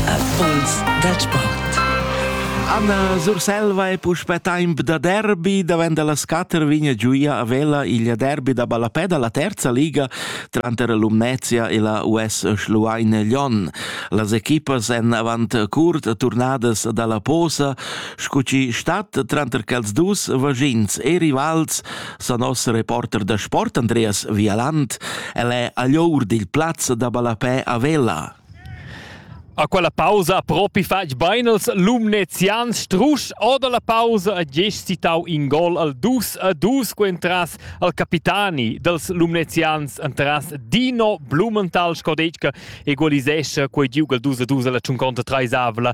Erfolgs dal sport. Anna Surselva è puspè temp da derby, davent da las quatter vigna giuia a Vela il derby da ballapè da la terza liga tranter l'Umnezia e la US Schluein Lyon. Las equipas èn avant curt turnadas da la posa, sco chi stat tranter quels dus vaschins e rivals sa nos reporter da sport Andreas Vialant, el è agl or dil plaz da ballapè a Vela. A quella pausa propi fatg beinels lumnezians strusch oda la pausa a gest citau in gol al 2 a 2 cu entras al capitani dels lumnezians entras Dino Blumenthal Scodecca egualisescha quei giug al 2 a 2 la tschunconta traisavla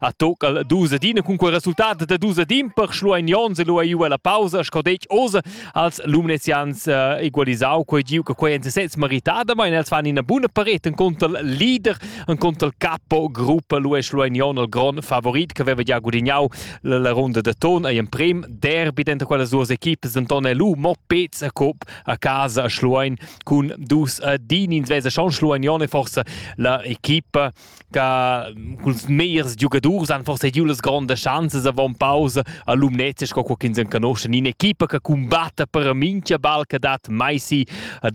A tocal dus adina cun quei resultat da dus adin per Schlueinions e lu ei la pausa sco detg oz als Lumnezians eh, egualisau quei giu che quei en sez meritada, els fan ina buna paret en contra il leader en contra il capo gruppa lu e Schlueinion il gron favorit che aveva già gudignau la ronda de ton ei in prim derby dentro quelle sue equipes Anton e lu mo pez a cop a casa a Schluein cun dus adin ins vesa schon Schlueinion e forse la equipa che culs meiers giugadurs han forse giu las grondas chanzas avon pausa a Lumnezia sco co ch'ins enconosce in equipa che combatta per mincha ball che dat mai si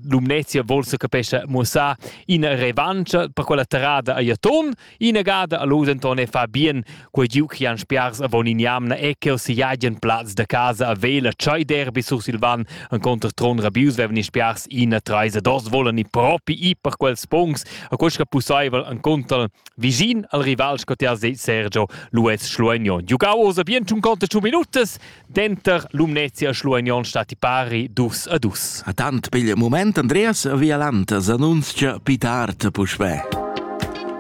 Lumnezia vol se capescha muossar ina revancha per quella terrada a Jaton inagada a Losenton e fa bien Quei giu chi han spiars avon in jamna è che siagen plaz da casa a Vela Chai Derby Sursilvan en contr Tron Rabius vevan spiars ina treisa dos volan i propi i per quels pungs a questa pussaivel en contra vicin al rival scotier Sergio Luis Schluegno. Giugau osa bien tun conta tun minutas denter Lumnezia e Schluegno stati pari dus a dus. A tant pigl moment Andreas Vialant s'annunzia pit art puspè.